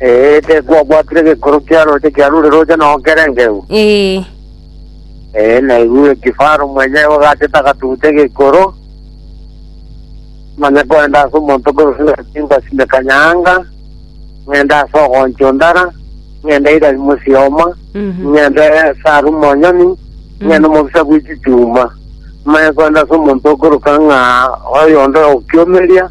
Ee, tekwabwatire gekorwa kia roche kiarure roche nao kerengeu. Ee, Ee, naigure kifaro mwenye ogachete agatuguta egekoro. Manya kwenda ase omonto korosina simba sime kanyanga, ng'ende ase ogoncho ndara, ng'ende irari mosioma, mhm. ng'ende saru monyoni, ng'ende omobisa bw'echichuma. Manya kwenda ase omonto okoroka ng'a oyonde okiomeria,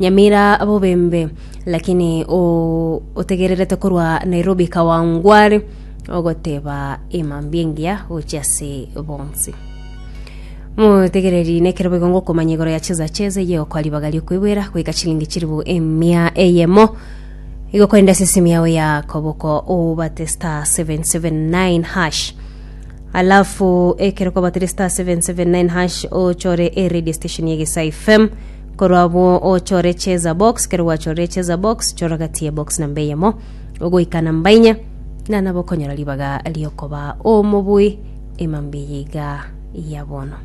Nyamira bobembe, lakini otegererete korwa Nairobi Kawangware ogoteba emambia engiya gochia ase bonsi. Motegereri nekero boigo ngokomanya igoro ya cheza cheza eye okwa ribaga riokoigwera goika chilingi chiribu emia eyemo igo korende ase esimu yao ya koboko obate star 779 hash alafu ekero kwabatire star 779 hash ochore e radio station ya Egesae FM Korwa abwo ochore echeza box, kero gwachorire echeza box, chora gati ye box namba eyemo ogoika namba inya, na nabo okonyora ribaga riokoba omobui emambia yaiga ya bono.